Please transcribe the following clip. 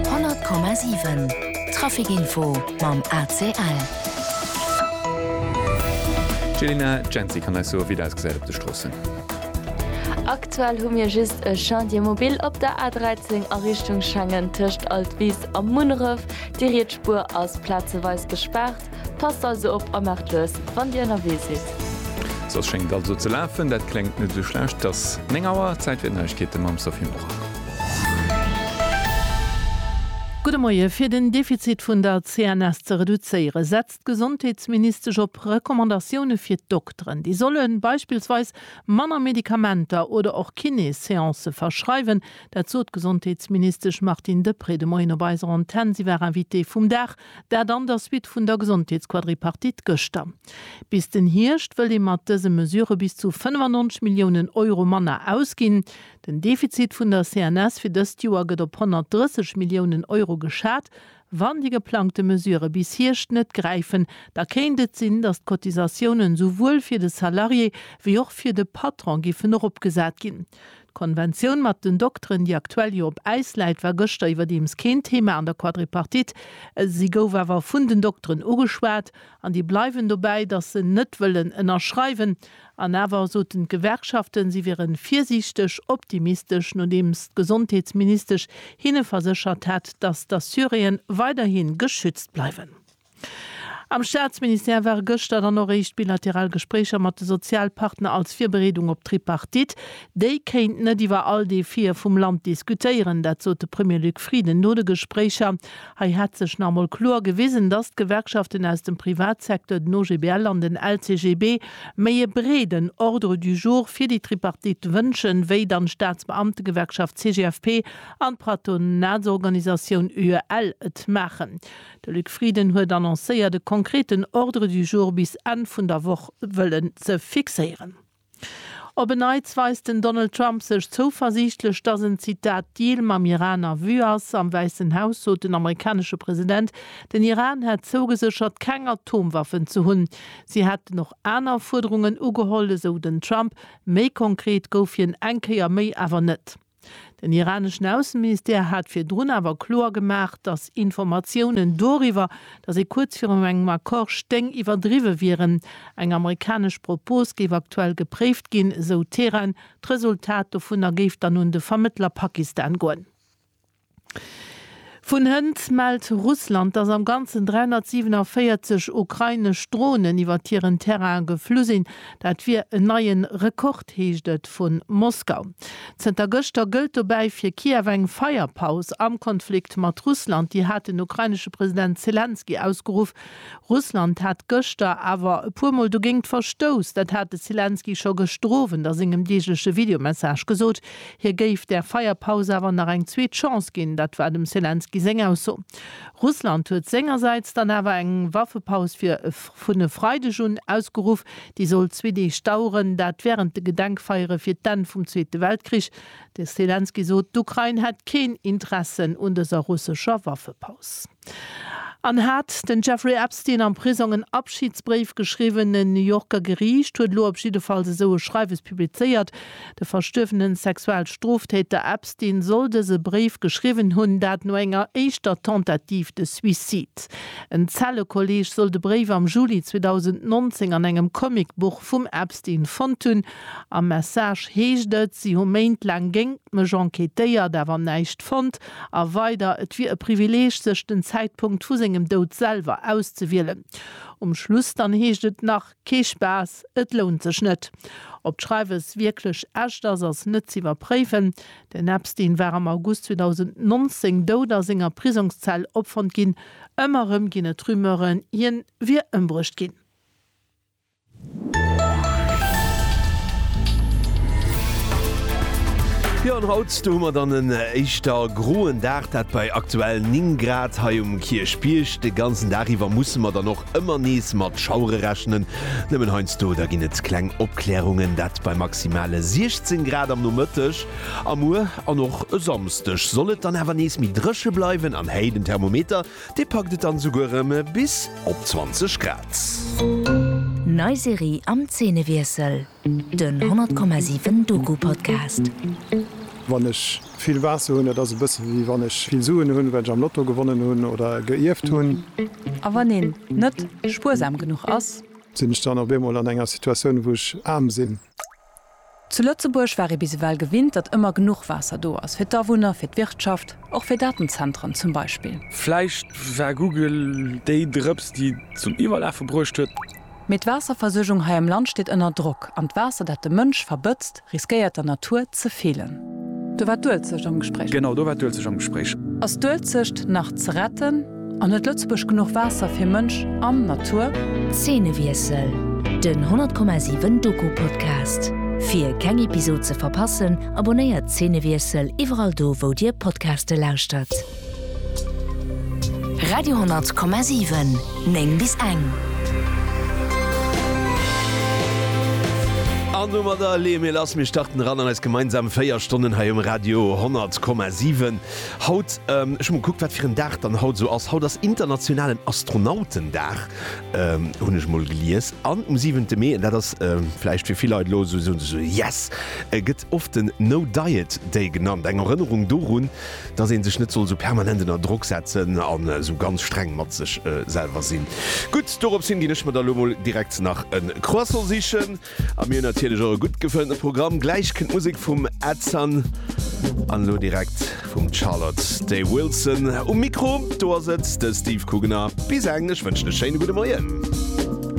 100,7 Trafic Info mam ACL. D'Jelena Jency kann eis soe wéi et ausgesäit op de Stroossen. Aktuell hu mir just e Chantier mobile op der A13 a Richtung Schengen tëscht Altwis a Munneref. Déi riets Spuer ass plazeweis gespaart. Passt also op a maacht lues, wann Dir ënnerwee sidd. Sou, et schéngt alt esou ze lafen. Dat kléngt net esou schlecht. Et ass 9 Auer, Zäit fir d'Neiegkeete mam Sophie Morang. Gudde Moie. Fir den Defizit vun der CNS ze reduzéiere setzt d'Gesondheetsministesch op Recommandatioune fir d'Dokteren. Déi solle beispillsweis manner Medikamenter oder och Kiné-Seancë verschreiwen. Dat sot d'Gesondheetsministesch Martine Deprez de Moien op eiser Antenn. Si war Invitée vum Dag Dat an der Suite vun der Gesondheetsquadripartite gëschter. Bis den Hierscht wëllt ee mat dëse Mesurë bis zu 95 Milliounen Euro manner ausginn. Den Defizit vun der CNS fir dëst Joer gëtt op 130 Milliounen Euro geschat. Wann déi geplangte Mesurë bis Hierscht net gräifen, da kéint et sinn, datt d'Cotisatiounen souwuel fir de Salarié wéi och fir de Patron giffen eropgesat ginn. D'Konventioun mat den Dokteren, déi aktuell jo op Äis läit, war gëschter iwwerdeems keen Thema an der Quadripartite. Si gouf awer vun den Dokteren ugeschwat an déi bleiwen dobäi, datt se net wëllen ënnerschreiwen. An awer soten d'Gewerkschaften, si wiere virsiichteg optimistesch, nodeems d'Gesondheetsministesch hinne verséchert hat, datt d'Assuréen weiderhi geschützt bleiwen. Am Staatsministère ware gëschter dann och éischt bilateral Gespréicher mat de Sozialpartner als Virbereedung op d'Tripartite. Déi kéint net iwwer all Defie vum Land diskutéieren. Dat sot de Premier Luc Frieden no de Gespréicher. Hei hätt sech nach emol kloer gewisen, datt d'Gewerkschaften aus dem Privatsecteur, den OGBL an den LCGB, méi e breeden Ordre du jour fir déi Tripartite wënschen, wéi dann d'Staatsbeamtegewerkschaft CGFP an d'Patronatsorganisatioun UEL et maachen. De Luc Frieden huet annoncéiert e konkreten Ordre du jour bis Enn vun der Woch wëllen ze fixéieren. Op en Neits weist den Donald Trump sech zouversiichtlech, dass en, Zitat, Deal mam Iran a Vue ass. Am Wäissen Haus sot den amerikanesche President, den Iran hätt zougeséchert, keng Atomwaffen ze hunn. Si hätten och aner Fuerderungen ugeholl, esou den Trump. Méi konkret gouf hien eng Kéier méi awer net. Den iraneschen Ausseministère hat virdrun awer kloer gemaach, datt Informatiounen doriwwer, datt ee kuerz virum engem Accord stéing, iwwerdriwwe wieren. Eng amerikanesch Propos géif aktuell gepréift ginn, esou Teheran. D'Resultat dovunner géif dann un de Vermëttler Pakistan goen. Vun hënt mellt Russland, dass am Ganzen 347 ukrainesch Dronen iwwert hiren Terrain geflu sinn. Dat wier en neie Rekord, heescht et vu Moskau. Zënter gëschter gëllt dobäi fir Kiew eng Feierpaus am Konflikt mat Russland. Déi hat den ukrainesche President Selenskyj ausgeruff. Russland hat gëschter awer e puer Mol dogéingt verstouss. Dat hat de Selenskyj scho gëschter Owend a sengem deegleche Videomessage gesot. Hie géif där Feierpaus awer nach eng zweet Chance ginn, dat war dem Selenskyj seng Ausso. Russland huet sengersäits dann awer eng Waffepaus fir vun e Freideg un ausgeruff. Déi soll zwee Deeg daueren, dat wärend de Gedenkfeiere fir d'Enn vum Zweete Weltkrich. De Selenskyj sot, d'Ukrain hätt keen Interessen un dëser russescher Waffepaus. An hat den Jeffrey Epstein am Prisong en Abschidsbréif geschriwwen? En New Yorker Geriicht huet elo op jiddefalls esou e Schreiwes publizéiert. De verstuerwene Sexualstrooftäter Epstein soll dëse Bréif geschriwwen hunn, dat no enger éischter Tentative de suicide. En Zellekolleeg soll de Bréif am Juli 2019 an engem Comicbuch vum Epstein fonnt hunn. Am Message heescht et, Si hu Méint laang géingt mech enquêtéiert, awer näischt fonnt. A weider, Et wier e Privileeg, sech den Zäitpunkt vu sengem Doud selwer auszewielen. Um Schluss dann heescht et nach, Kee Spaass, et lount sech net. Ob d'Schreiwes wierklech echt ass, ass net z'iwwerpréifen. Den Epstein war am August 2019 dout a senger Prisongszell opfonnt ginn. Ëmmer erëm ginn et Rumeuren, hien wier ëmbruecht ginn. Jo an haut, do hu mer dann en éischter groen Dag, dat bei aktuell 9 Grad hei um Kierchbierg. De ganzen Dag iwwer musse mer dann och ëmmer nees mat Schauere rechnen. Nëmmen heiansdo, da ginn et kleng Opklärungen, dat bei maximale 16 Grad am Nomëtteg. A muer an och e Samsdeg soll et dann awer nees méi dréche bleiwen an héi den Thermometer Dee packt et dann esouguer erëm bis op 20 Grad. Nei Serie am Zeenewiessel, den 100,7 Doku-Podcast. Wann ech vill Waasser hunn, dat ass e bësse wéi wann ech vill Suen hunn, well ech am Lotto gewonnen hunn oder e geierft hunn. A wann een net spuersam genuch ass? Sinn ech dann op eemol an enger Situatioun, wou ech aarm sinn? Zu Lëtzebuerg war ee bis ewell gewinnt, datt ëmmer genuch Waasser do ass, fir d'Awunner, fir d'Wirtschaft, och fir Datenzentren zum Beispill. Vläicht war Google déi Drëps, déi et zum Iwwerlafe bruecht huet. Mee d'Waasserversuergung hei am Land steet ënner Drock, an d'Waasser, dat de Mënsch verbëtzt, riskéiert der Natur ze feelen. Do war d'Uelzecht am Gespréich. Genau, do war d'Uelzecht am Gespréich. Ass d'Uelzecht nach ze retten? An huet Lëtzebuerg genuch Waasser fir Mënsch an Natur? Zeenewiessel, Den 100,7 Doku Podcast. Fir keng Episod ze verpassen, abonnéiert Zeenewiessel iwwerall do wou dir Podcaste lauschtert. Radio 100,7, 9 bis eng. An domadder leeë mir lass. Mir starten eran an eis gemeinsam 4 Stonnen hei um Radio 100,7. Haut, ech hu mol gekuckt, wat fir en Dag dann haut esou ass, haut ass internationalen Astronautendag, hunn ech mol gelies, an um siwente Mee, an dat ass vläicht fir vill Leit elo esou, soen se esou, yes, gëtt oft den No Diet Day genannt, eng Erënnerung dorun, dass ee sech net soll esou permanent ënner Drock setzen an esou ganz streng mat sech selwer sinn. Gutt, doropshin ginn ech mer da elo mol direkt nach e Croissant sichen. A mir hunn natierlech och e gutt gefëllten Programm. Gläich kënnt Musek vum Edson an elo direkt vum Charlotte Day Wilson. Um Mikro do ass et de Steve Kugener. Bis eng, ech wënschen e schéine gudde Moien.